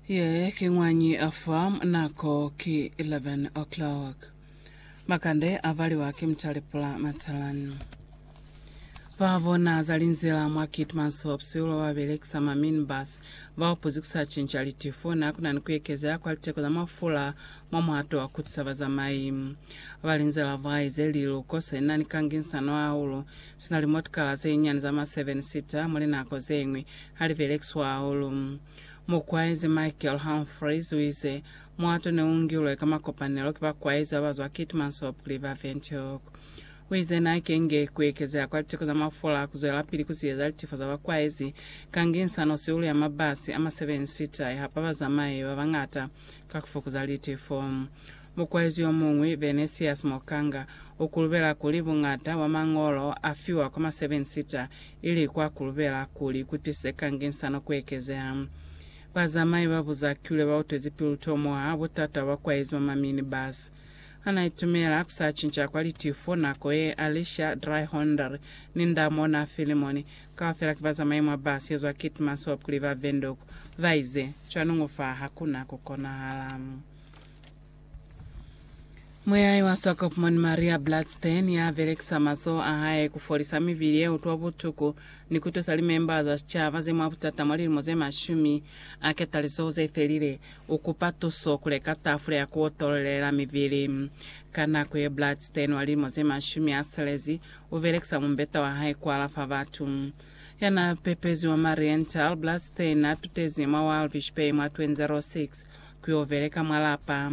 Ye ki ñwañi ya fa nako ki 11 o'clock. Makande a valiwa ki mutalipula matalanu. Ba bona za linzila mwa Keetmans Hops ulo ba belekisa ma minibus ba upuzi ku sa cinca litifo na ku na ni ku ekezeha kwa liteko za mafula mwa muhato wa ku tusa bazamai. Ba linzila ba ize liluko se na ni kanginsano hahulu Sina limotikala zenyinyani za ma seven seater muli nako zeñwi ha li belekiswa hahulu. Mukwaezi Michael Humphreys uize, Muato ne u ngilwe ka makopanelo ki bakwaezi ba ba zwa Keetmanshoop kuli ba Windhoek. Uize, Na kenge ku ekezeha kwa liteko za mafula ku zwelapili ku ziyeza litifo za bakwaezi, kanginsa no sihulu ya mabasi a ma seven seater ya hapa bazamayi ba bañata ka ku fukuza litifo. Mukwaezi yo muñwi, Venesius Mokanga, u kulubela kuli buñata bwa mañolo a fiwa kwa ma Seven Sitter ili kwa kulubela kuli ku tise kanginsano ku ekezeha. Bazamai ba Buzakilwe ba utwezi pilu tomuha butata bwa bakwaezi ba ma minibus. Ha na itumela ku sa cinca kwa litifo nako ye, Alicia Dryhonder ni nda mona Philemon, kaufela ki bazamai mwa bus ye zwa Keetmanshoop ku li ba Windhoek, ba ize, Cwaningu fa ha ku na ku konahala. Muyahi wa Swakopmund Maria Bladstein ya belekisa mazoho a hae ku folisa mibili ye utwa butuku ni ku tusa limemba za sicaba ze mwa butata mwa lilimo ze mashumi a ketalizoho ze felile, u kupa tuso ku leka tafula ya ku otolelela mibili. Ka nako ye, Bladstein wa lilimo ze mashumi a silezi u belekisa mumbeta wa hae ku alafa batu. Ya n'a pepezwi mwa Marienthal, Bladstein n'a tutezi mwa Walvish Bay mwa 2006. ku yo beleka mwa lapa.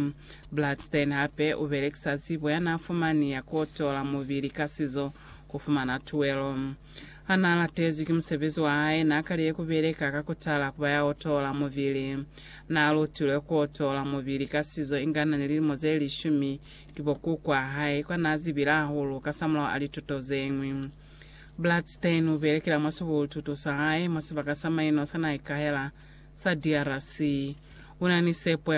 Bladstein hape u belekisa zibo ya n'a fumani ya k'o tola mubili ka sizo ku fumana tuelo. Ha n'a latezwi ki musebezi wa hae, n'a kalile ku beleka ka ku tala ku ba ya o tola mubili. N'a lutilwe k'o tola mubili ka sizo inga n'a ni lilimo ze lishumi ki bo kuku a hae, kwa n'a zibile hahulu kasamulaho a lituto ze ñwi. Blatstein u belekela mwa sibututo sa hae mwa sibaka sa mainwa sa naha i kahela sa DRC. U na ni sepo ya kuli